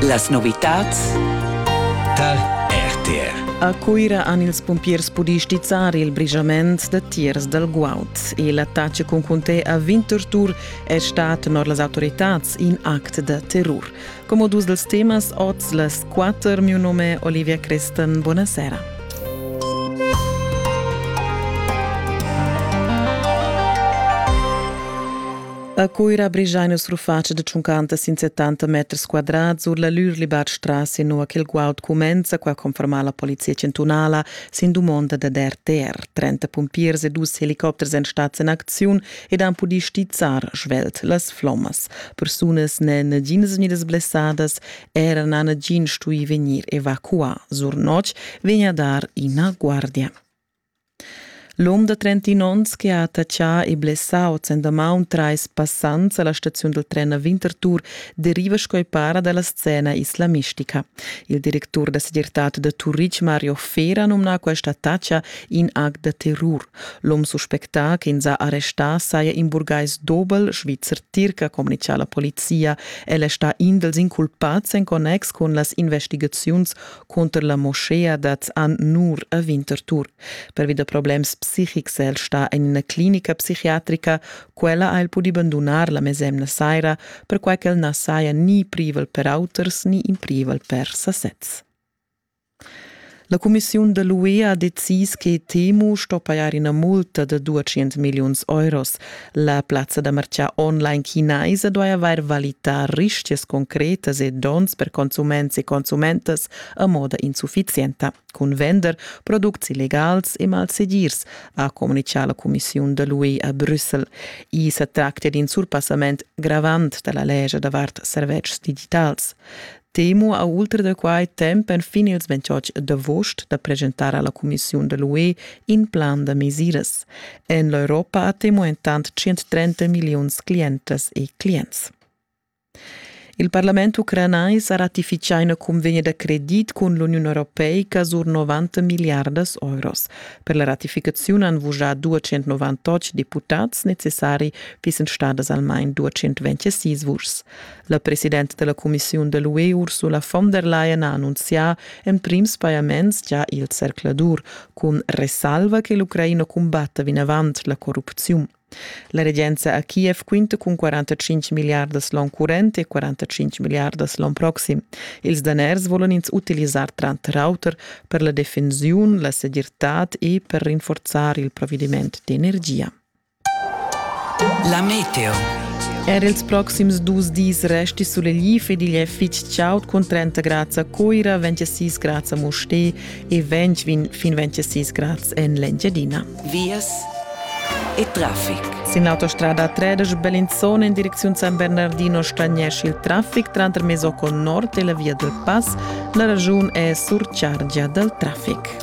Las novitads tar RTR. A Cuira han ils pumpiers pudì stizzar il brigiament da tiers dal guaud e l'attacc cun cunté a 20 tortur è stat tenor las autoritads in act da terror. Come dus dels temas oz las quatter, mio nome Olivia Crestan, buonasera. A Cuira brigiai nus rufatscha de tschuncanta sin 70 meters quadrats sur la Lürlibat strasse nua che il guaud cumenza qua confermar la polizia centunala sin dumonda da DRTR. 30 pumpiers e dus helicopters en stat en acziun ed han pudì stizzar svelt las flommas. Persunas ne naginas vegnidas blessadas era na nagin stui vegnir evacuà. Sur notg vegn a dar ina guardia. L'um da trentin onns che ha attatschà e blessà oz en damaun trais passants a la staziun dal tren a Winterthur deriva sco para da la scena islamistica. Il directur da segirtad da Turitg, Mario Fera, numna questa attacca in act da terror. L'um suspectà che ins ha arrestà saja in burgais dobel, Svizzer Tirca, communica la polizia. El è stà in dals inculpads en connex cun las investigaziuns Cunter la moschea dat an nur a Winterthur. Pervi da problems psichics è el sta en ina clinica psichiatrica. Quella ha el pudi bandunar la mesemna saira, perquai ch'el na saja ni privel per auters ni in privel per sasez. La cumissiun da l'UE ha decis che Temu sto pajar ina multa da 200 milliuns euros. La plazza da marchà online chinaisa duai avair valità rischias concretas e donns per consuments e consumentas a moda insuffizienta. Cun vender products illegals e malsegirs, ha communitgà la cumissiun da l'UE a Brüssel. I sa tractia d'in surpassament gravant da la legia davart servetschs digitals. Temo ha ultra da quai temp enfin ils 28 d'avost da presentar alla Commissiun de l'UE in plan da mesiras. En l'Europa ha Temo entant 130 miliuns clientas e clients. Il Parlament ucranais ha ratificà una convegna da credit con l'Union Europeica sur 90 miliardas euros. Per la ratificazione han vujà 298 deputats necessari, fissen stadas almain 226 vuschs. La presidenta della cumissiun da l'UE Ursula von der Leyen ha annunzià emprims pajaments già il zercladur, cun resalva che l'Ucraina cumbatta vinavant la corrupziun. La regenza a Kiev quinta cun 45 miliardas l'on current e 45 miliardas l'on proxim. Ils daners volan ins utilisar tranter auter per la defensiun, la segirtad e per rinforzar il provvediment d'energia. La meteo. Er ils proxims dus dis resti sulegliv ed igl è fitg chaud cun 30 grads a Coira, 26 grads a Mustér e 20 fin 26 grads en l'Engiadina. Vias e traffic. Sin l'autostrada 13 Bellinzona in direcziun San Bernardino stagnesce il traffic tranter Mesocco Nord e la via del Pass. La ragiun è surchargia dal traffic.